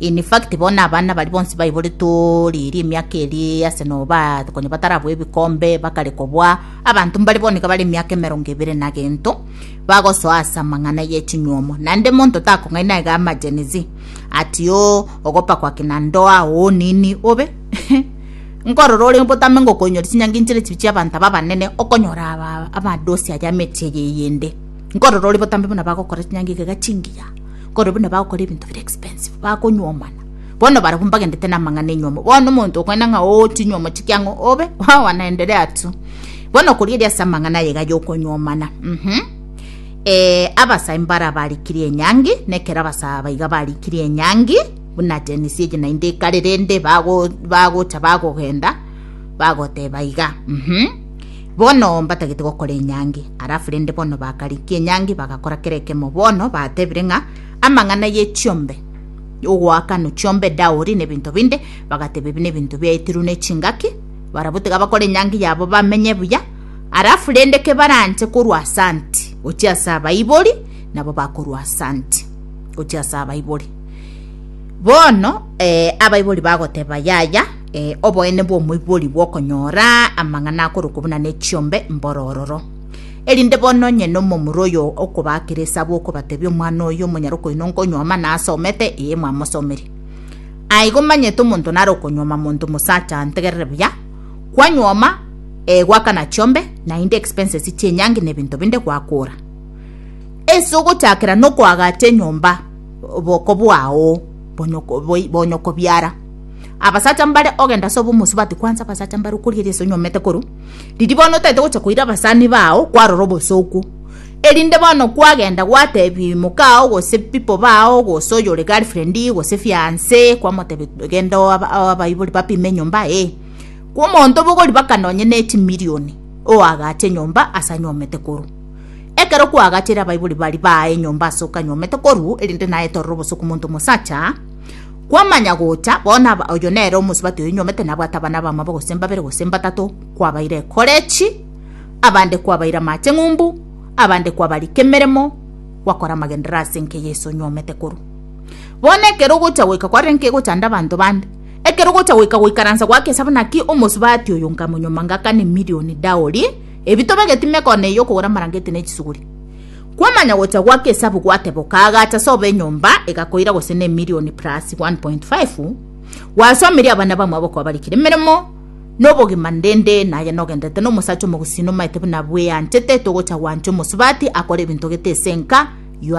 In fact bono na abana baria bonsi baiboretwe riiri emiaka eria ase noba konya batarabua ebikombe bakare kobua abanto mbare bono iga bare emiaka emerongo ebere na gento bagosoa ase amang'ana ye chinyuomo naende monto takong'aina iga ama Gen Z ati oo ogopa kwa kina ndoa oo nini obe nkorora ore botame ngo okoinyora chinyangi nchire chibi chia abanto aba abanene okonyora aba amadosi aria amechie eye eyende nkorora ore botambe buna bagokora chinyangi iga iga chingiya. Korwa buna bagokora ebinto bire expensive bakonywomana bono barabwo mbagendete namang'ana enywomo bono omonto okwena ng'a oo chinywomo chikia ng'o obe wawa naendere atu bono koria ase amang'ana aye gaya okonywomana mhm eh, abasai mbara barikirie enyangi nekero abasaba baiga barikirie enyangi buna tenisi eye naende ekare rende bago- bagocha bagogenda bagoteba iga mhm Bono mbatagete gokora enyangi. Alafu rende bono bakarikia enyangi, bagakora kera ekemo. Bono batebire ng'a amang'ana ye chiombe ogoakano chiombe daori na ebinto binde, bagateba ebi nebinto biaitirwe ne chingaki, barabwo tiga bakore enyangi yabo bamenye buya. Alafu rende kebaranche korwa asanti gochia ase abaibori, nabo bakorwa asanti gochia ase abaibori. Bono eh, abaibori bagoteba yaya, Ee, oboene bw'omoibori bw'okonyora amang'ana akorokwa buna nechiombe mborororo. Erinde bono onye nomomura oyo okobaakera esabu okobatebia omwana oyo omonyare okoina onkonywa amana asomete, ee mwamosomeri. Aigo manyete omonto nare okonywoma monto mosacha antegerere buya, kwanywoma ee gwakana chiombe, naende expenses chienyangi na ebinto binde gwakora. Ese ogochakera nokoagacha enyomba oboko bwao bonyoko boibonya okobiara. Abasacha mbare ogenda ase obomosubati kwansa abasacha mbare okoria ase onyomete koru riria bono otaete gocha koira abasani bao kwarora obosooku erinde bono kwagenda gwatebi mokao gose pipo bao gose oyore girlfriendi gose fiance kwamotebi genda abaibori bapime enyomba ee kwa omonto bogori baka nonye ne chimirioni oagache enyomba ase anyomete koru ekero kwaagachere abaibori baria baae enyomba ase okanyomete koru erinde naye torora obosooku monto mosacha. Kwamanya gocha, bono aba, oyo nere omosubati oyo nyomete nabwate abana abamabo gose mbabere gose mbatato, kwabaire ekorechi, abande kwabaire amache ng'umbu, abande kwabarika emeremo, gwakora amagenderero ase enka eye Yeso onyomete korwa. Bono ekero ogocha goika kwarenge ki gochanda abanto bande? Ekero ogocha goika goikaransa gwake ase naki omosubati oyo nkamonyoma ngakana emilion daori, ebi tobegeti mekone eye okogora amarangeti ne chisuguri. Kwamanya gocha gwake esabu gwateboka agacha sobo enyomba egakoira gose ne emilioni plus 1.5 gwasomirie abana bamwe abo kwabarikire emeremo nobogima ndende naye nogendete nomosacha omogusii nomaete buna bweanchete togocha gwancha omosubati akore ebinto gete ase enka